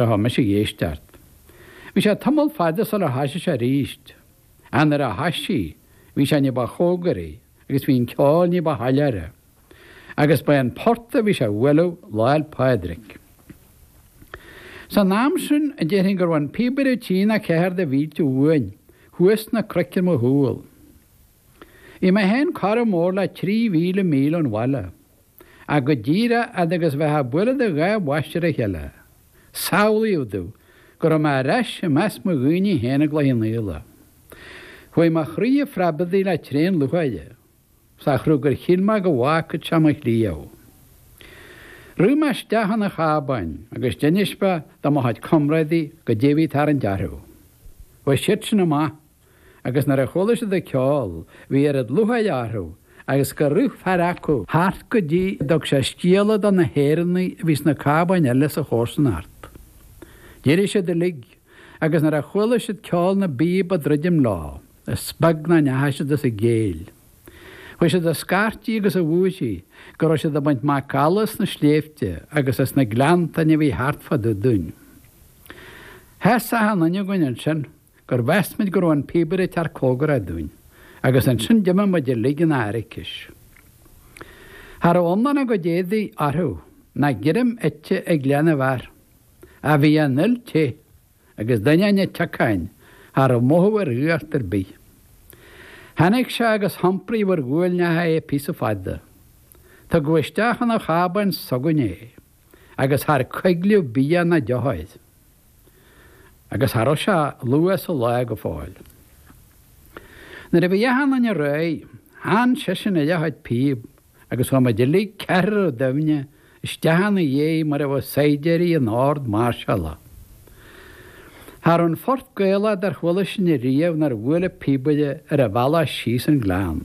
Tá mise ag éisteacht. Bhí sé tamall fada sula thoisigh sé arís. Ach nuair a thoisigh, bhí sé ní ba chomhgaraí agus bhí an ceol ní ba shoiléire. Agus ba é an port a bhí sé a bhualadh Lá'l Pádraig. San am sin, déarfainn go raibh an píobaire trí nó ceathair de mhílte uainn, thuas sna cnoic ar mo chúl. Bhí mé féin corradh mór le trí mhíle míle ón bhaile. ach go díreach fhad agus a bheifeá ag bualadh do dhá bhois ar a chéile. Samhlaíodh domh go raibh mé ar ais i measc mo dhaoine féin i gCloich Cheannfhaola. Chuaigh mo chroí a phreabadaigh le tréan lútháire sa chruth gur shíl mé go bhfágfad sé mo chliabh. Rith mé isteach chun an chábáin agus d'inis mé do mo chuid comrádaithe goidé a bhí ag tarraingt orthu. Bhuail siadsan amach. agus nuair a chuala siad an ceol bhí oiread lútháir orthu agus gur rith fear acu thart go dtí go dtug sé scéala do na hÉireannaigh a bhí sna cábáin eile sa chomharsanacht. D'éirigh siad uilig agus nuair a chuala siad ceol na bpíob ag druidim leo is beag nach ndeachaigh siad as a gcéill. Chuaigh siad a scairtigh agus a bhúirthigh go raibh siad ag baint macalla as na sléibhte agus as na gleanntáin a bhí thart fá dtaobh dúinn. Sheas achan duine againn ansin. gur mheas muid go raibh an píobaire ag teacht comhgarach dúinn, agus ansin d'imigh muid uilig ina airicis. Cha raibh iomlán a gcuid éadaigh orthu, ná greim ite ag leath na bhfear, ach bhí an fhuil te, agus d'ainneoin an tsiocáin, cha raibh mothú ar fhuacht ar bith. Tháinig sé agus hiompraíodh ar ghuailneacha é píosa fada. Tugadh isteach chun an chábáin s'againne é. agus char coigleadh bia ná deoch air. Agus cha raibh sé ach luath sa lá go fóill. Nuair a bhí achan duine réidh, theann seisean air a chuid píob agus chuaigh muid uilig ceathrar doimhne isteach ina dhiaidh mar a bheadh saighdiúirí in ord mairseála. Cha raibh aon phort Gaelach dár chuala sinn ariamh nár bhuail an píobaire ar a bhealach síos an gleann.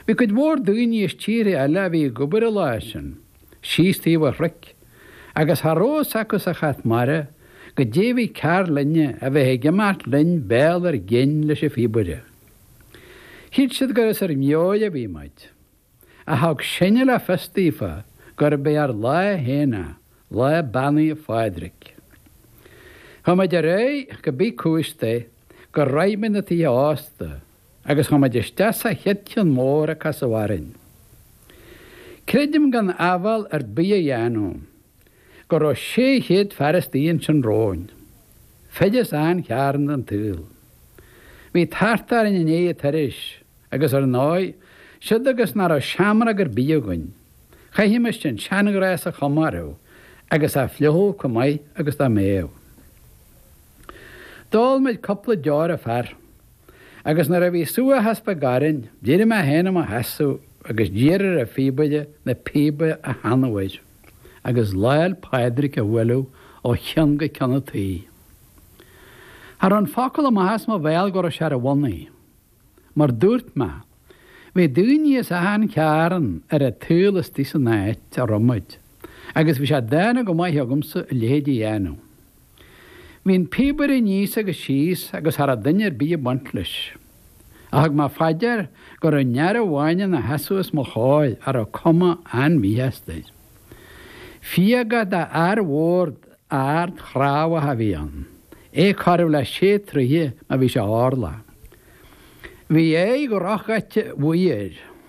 Bhí cuid mhór daoine as tíortha eile a bhí ag obair an lá sin síos taobh an chnoic, agus cha raibh a fhios acu sa chat mara goidé a bhí cearr linne a bheith ag imeacht linn béal ár gcinn leis an phíobaire. Shíl siad gur as ár meabhair a bhí muid, ach thug sinne le fios daofa gurb é ár lá féin é, lá Beannaithe Phádraig. Chuaigh muid ar aghaidh cibé cúis é gur shroich muid na tithe ósta, Agus chuaigh muid isteach sa chéad cheann mór a casadh orainn. Creidim gan áibhéil ar bith a dhéanamh, go raibh 600 fear istigh ansin romhainn. Fir as achan chearn den tsaol. Bhí tart orainn i ndiaidh an turais, agus ar ndóigh, siúd agus nach raibh seamróg ar bith againn, chaithfimis an seanghnás a chomóradh agus a fhliuchadh chomh maith agus dá mbeadh. D'ól muid cúpla deor an fear, agus nuair a bhí subhachas beag orainn, d'éirigh mé féin i mo sheasamh agus d'iarr ar an phíobaire na píoba a theannadh uair, agus Lá'l Pádraig a bhualadh ó cheann go ceann an tí. Cha raibh an focal amach as mo bhéal go raibh sé ar a bhonnaí. Mar dúirt mé, bhí daoiní as achan chearn ar an tsaol istigh san áit a raibh muid, agus bhí sé dána go maith agamsa a leithéid a dhéanamh. Bhí an píobaire aníos agus síos agus cha rabh duine ar bith ag baint leis. Ach thug mé fá dear go rabh aon fhear amháin ina sheasamh i mo chóir a rabh cuma an-mhíshásta air. Fíogach d'fhear mhór ard chnámhach a bhí ann, é corradh le sé troithe má bhí sé orlach. Bhí aghaidh dhrochdhaite bhuí air.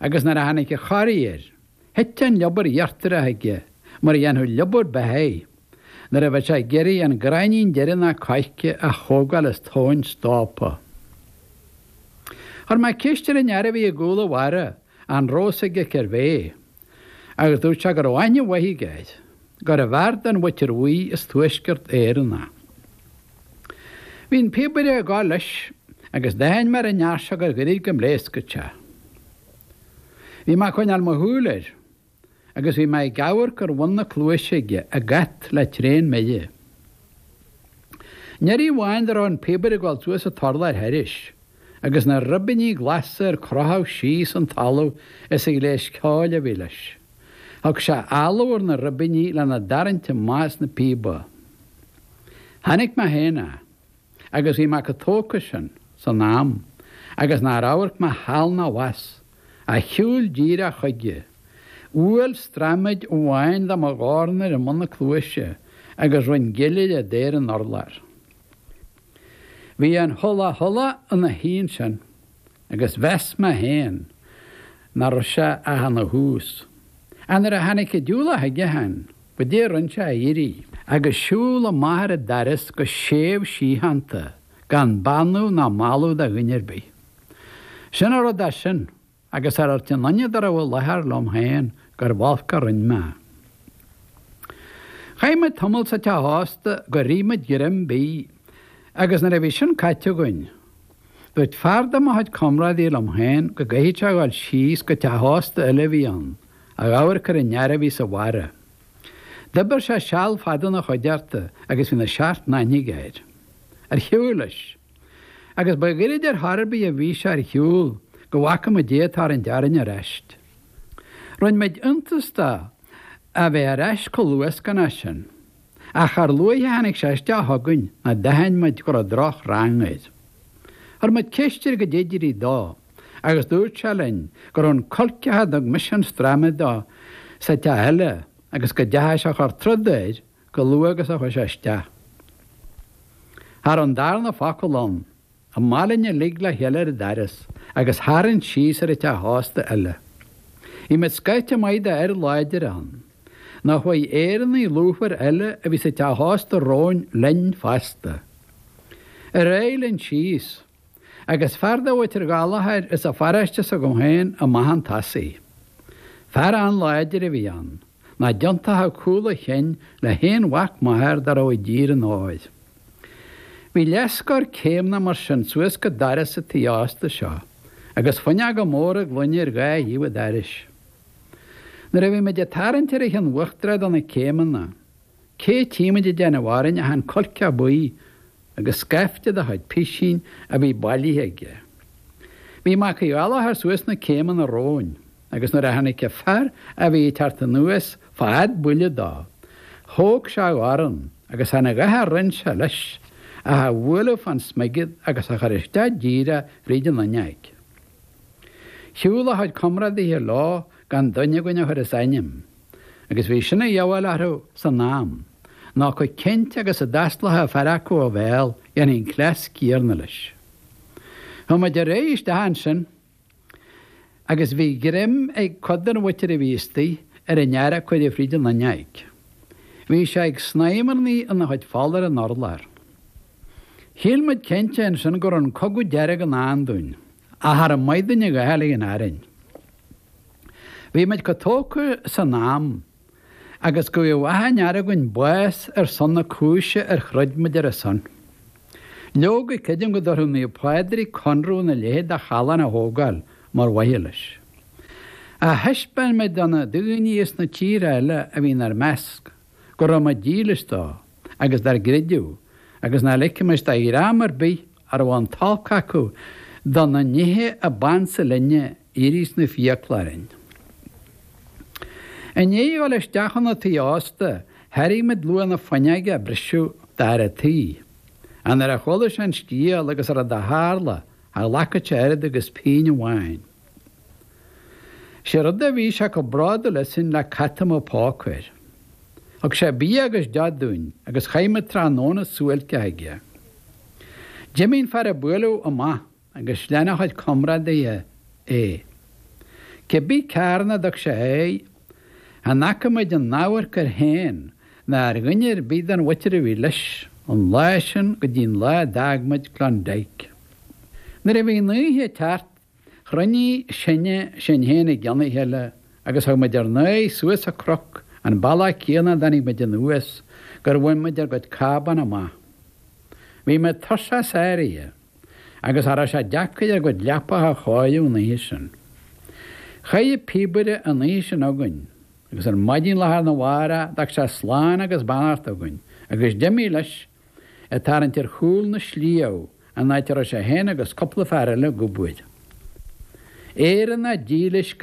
agus nuair a tháinig an chorraí air, thit an liobar íochtarach aige mar a dhéanfadh liobar beithígh nuair a bheadh sé ag iarraidh an gráinnín deireanach coirce a thógáil as tóin stópa. Chuir mé ceist ar an fhear a bhí i gcúl an bharra an rabh a fhios aige cérbh é. agus dúirt sé go raibh aithne mhaith aige air, gurbh fhear den Mhuintir Bhuí as Tuaisceart Éireann é. Bhí an píobaire ag gabháil leis agus d'aithin mé ar an fhear seo gur ghairid go bpléascfadh sé. Bhí mé ag coinneáil mo shúil air agus bhí mé ag amharc ar bhun na cluaise aige ag at le tréan mire. Aon iarraidh amháin dá raibh an píobaire ag gabháil suas an t-urlár thairis, agus na ribíní glasa ar crochadh síos go talamh as an ghléas ceoil a bhí leis. Thug sé áladh ar na ribíní lena dtarraingt amach as na píoba. Chonaic mé féin é agus bhí mé chomh tógtha sin, san am, agus nár amharc mé thall ná abhus, ach shiúil díreach chuige. Bhuail straiméad amháin de mo dhorn air i mbun na cluaise agus rinn gile de ar an urlár. Bhí an hula hula ina shuí ansin, agus mheas mé féin nach raibh sé ach ina thús. Ach nuair a tháinig an diúlach chuige féin, goidé a rinn sé ach éirí, agus siúl amach ar an doras go séimh síochánta, gan beannú ná mallú do dhuine ar bith. Sin a raibh de sin, agus char dhúirt aon duine dá raibh i láthair liom féin gurbh olc a rinn mé. Chaith muid tamall sa teach ósta gur ith muid greim bídh, agus nuair a bhí sin caite againn, dúirt fear de mo chuid comrádaí liom féin go gcaithfeadh sé a dhul síos go teach ósta eile a bhí ann, a dh'amharc ar an fhear a bhí sa bharra. D'oibir sé seal fada ina chuideachta agus bhí na seacht n-aithne aige air. Ar shiúil leis. agus ba ghairid ar chor ar bith a bhí sé ar shiúl go bhfaca muid é ag tarraingt orainn ar ais. Rinne muid iontas de a bheith ar ais chomh luath is go mbeadh sin, ach char luaithe a tháinig sé isteach chugainn ná d'aithin muid go raibh droch rang air. Chuir muid ceist air goidé a d'éirigh dó agus dúirt sé linn go raibh an cuilceach a dtug mise an straiméad dó sa teach eile agus go dteachaidh sé a chur troda air chomh luath agus a chuaigh sé isteach. Cha raibh an darna focal ann, amach linn uilig le chéile ar an doras agus tharraing síos ar an teach ósta eile. Bhí muid scaifte maith de fhir láidre ann, nó chuaigh Éireannaigh lúthmhara eile a bhí sa teach ósta romhainn linn fosta. Ar aghaidh linn síos. Agus fear de mhuintir Ghallachair as an pharóiste s'agam féin amach chun tosaigh. Fear an-láidir a bhí ann, nach dtiontóchadh cúl a chinn le haon mhac máthar dá raibh i dtír an óir. Bhí leathscór céimeanna mar sin suas go doras an tí ásta seo, agus fuinneoga móra gloine ar dhá thaobh an dorais. Nuair a bhí muid ag tarraingt ar an chionn uachtarach de na céimeanna, Cé tchímid ag déanamh orainn ach an cuilceach buí agus scaifte dá chuid pisín a bhí bailithe aige. Bhí Mac Uí Ghallachair suas na céimeanna romhainn agus nuair a tháinig an fear a bhí ag teacht anuas fad buille dó, thóg sé a dhorn agus dheamhan a dhath a rinn sé leis ach a bhualadh fán smigead agus a chur isteach díreach fríd an fhuinneoig. Shiúl a chuid comrádaithe leo gan duine againn a chur as ainm. agus bhí sin a dhíobháil orthu san am, nó chomh cinnte agus a d'fhosclódh fear acu a bhéal, dhéanfaí an cleas céanna leis. Chuaigh muid ar aghaidh isteach ansin, agus bhí greim ag cuid den mhuintir a bhí istoigh ar an fhear a cuireadh fríd an fhuinneoig. Bhí sé ag snámharnaigh ina chuid fola ar an urlár. Shíl muid cinnte ansin go raibh an cogadh dearg i ndán dúinn. ach ar an Maighdine Gael í in Éirinn. Bhí muid chomh tógtha san am agus go bhfaigheadh achan fhear againn bás ar son na cúise ar throid muid ar a son. Leoga, creidim go dtabharfadh Naomh Pádraig conradh ina leithéid de callán a thógáil mar mhaithe leis. Ach thaispeáin muid do na daoine as na tíortha eile a bhí inár measc go raibh muid dílis dó agus dár gcreideamh agus nach ligfimis do dhream ar bith a raibh an t-olc acu do na nithe a b'ansa linne éirí sna fiacla orainn. I ndiaidh a dhul isteach 'na tí ósta, thairg muid luach na fuinneoige a briseadh d'fhear an tí, ach nuair a chuala sé an scéal agus a raibh dá tharla, cha ghlacfadh sé oiread agus pingin amháin. Sé rud a bhí sé chomh bródúil asainn le cat a mbeadh póca air. Thug sé bia agus deoch dúinn agus chaith muid tráthnóna suáilceach aige. D'imigh an fear a buaileadh amach agus lean a chuid comrádaithe é. Cé bith cearn a dtug sé air, chan fhaca muid aon amharc air féin ná ar dhuine ar bith den mhuintir a bhí leis, ón lá sin go dtí'n lá a d'fhág muid Klondike. Nuair a bhí an oíche ag teacht, Chruinnigh sinne sinn féin i gceann a chéile agus thug muid ár n-aghaidh suas an cnoc, an bealach céanna a dtáinig muid anuas, gur bhain muid ár gcuid cábán amach. Bhí muid tuirseach sáraithe, agus cha rabh sé deacair ár gcuid leapacha a chóiriú an oíche sin. Chaith an píobaire an oíche sin againn, agus ar maidin lá arna mhárach d'fhág sé slán agus beannacht againn, agus d'imigh leis, ag tarraingt ar chúl na sliabh, an áit a raibh sé féin agus cúpla fear eile ag obair. Éireannach dílis go.